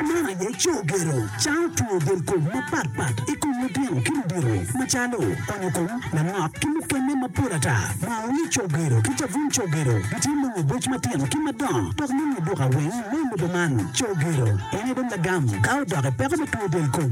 Man aye co gero, cawo two del kom mapat pat i kom litino ki ludito macalo onyo kom, lanok ki mukene mapol ata. Maoni co gero ki cabun co gero gitye nongo boc matino ki madongo dok nongo duka weng me lobo man. Co gero en aye dong lagam ka odok i peko me two del kom.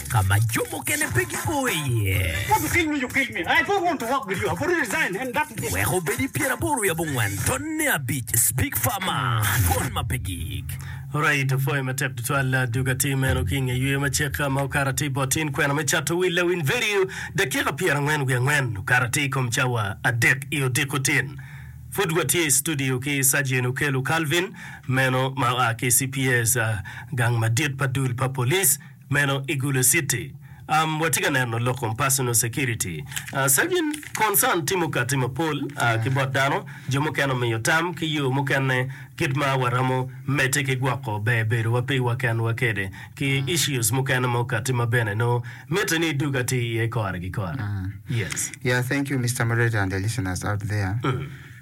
ka ma jo mukene pe gipo iye. Wek obed i pyeraboro wiye abongwen, tonne abic, Big Pharma, twon ma pe gik. Alright, opwoyo matek tutwal dug atir meno ki inge yweyo ma cek ma okato atir i bot tin kwena me cato wil lawiny vedio dakika pyera angwen wiye angwen okato atir i kom cawa adek i odiko tin. Pud watye i studio ki Sergeant Okello Calvin meno ma oa ki CPS gang madit pa dul pa police Meno i Gulu City. Um, watye ka neno lok kom personal security. Uh, Sergeant, concern tye mukati mapol uh, ki bot dano. Jo mukene omiyo tam ki yo mukene kit ma waromo medde ki gwoko ber bedowa piwa kenwa kede ki issues mukene mukati ma bene nongo mitte ni idug atir iye kore ki kore. Yes. Yeah, thank you Mister Moderator and the listeners out there.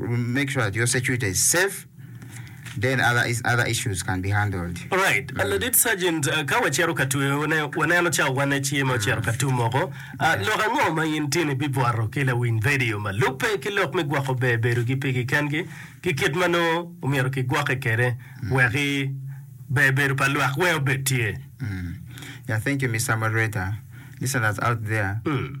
make sure that your security is safe then other is other issues can be handled. Alright, mm. Ladit Sergeant, uh, ka wacito ka tweyo, wane, waneno ca wane ci ma ocito ka tumoko. Uh, yeah. Lok ango ma in tini bibwaro ki lawiny radio ma lubbe ki lok me gwoko ber bedo gi pigi kengi ki kit ma nongo omyero ki gwoki kede mm. weki ber bedo pa lwak weng obed tye? Mm. Yeah, thank you, Mr. Moderator. Listeners out there. Mm.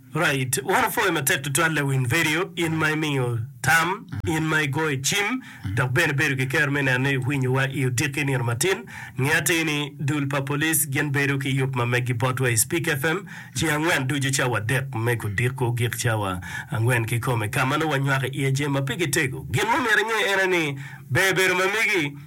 Right. Wan opwoyo matek tutwal lawiny vedio, in ma imiyo tam, in ma igoyo cim, dok bene bedo ki kero me neno ni winyo wa i odiki nino matin. Nge atir ni dul pa police gin bedo ki yub ma meggi bot wa i Speak FM ceng angwen ducu cawa adek me gudiko gik cawa angwen ki kome ka ma nongo wa nywako iye jami ma pe gi tego. Gin ma omyero inge ene ni ber bedo ma megi.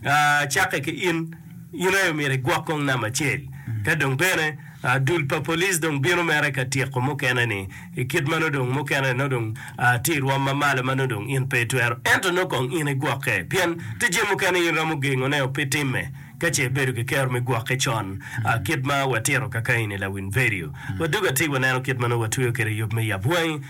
Cakke ki in, in aye omyero igwok kong namba acel. Ka dong bene dul pa police dong bino mere ka tyeko mukene ni i kit ma nongo dong mukene nongo dong tye i rwom ma malo ma nongo dong in pe itwero ento nongo kong in igwokke pien tye jami mukene in romo gengone o pe timme ka ce ibedo ki kero me gwokke con kit ma watito kakaeni lawiny vedio. Wadugo atir waneno kit ma nongo watweyo kwede yub me yab wangi.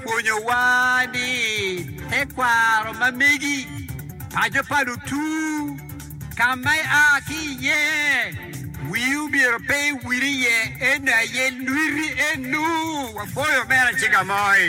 Pwonyowa ni tekwaro ma megi, paco pa lutur, ka ma ia ki iye, wi omyero pe ewil iye, ento aye lwiti enu. Wapwoyo Omera Cigamoy.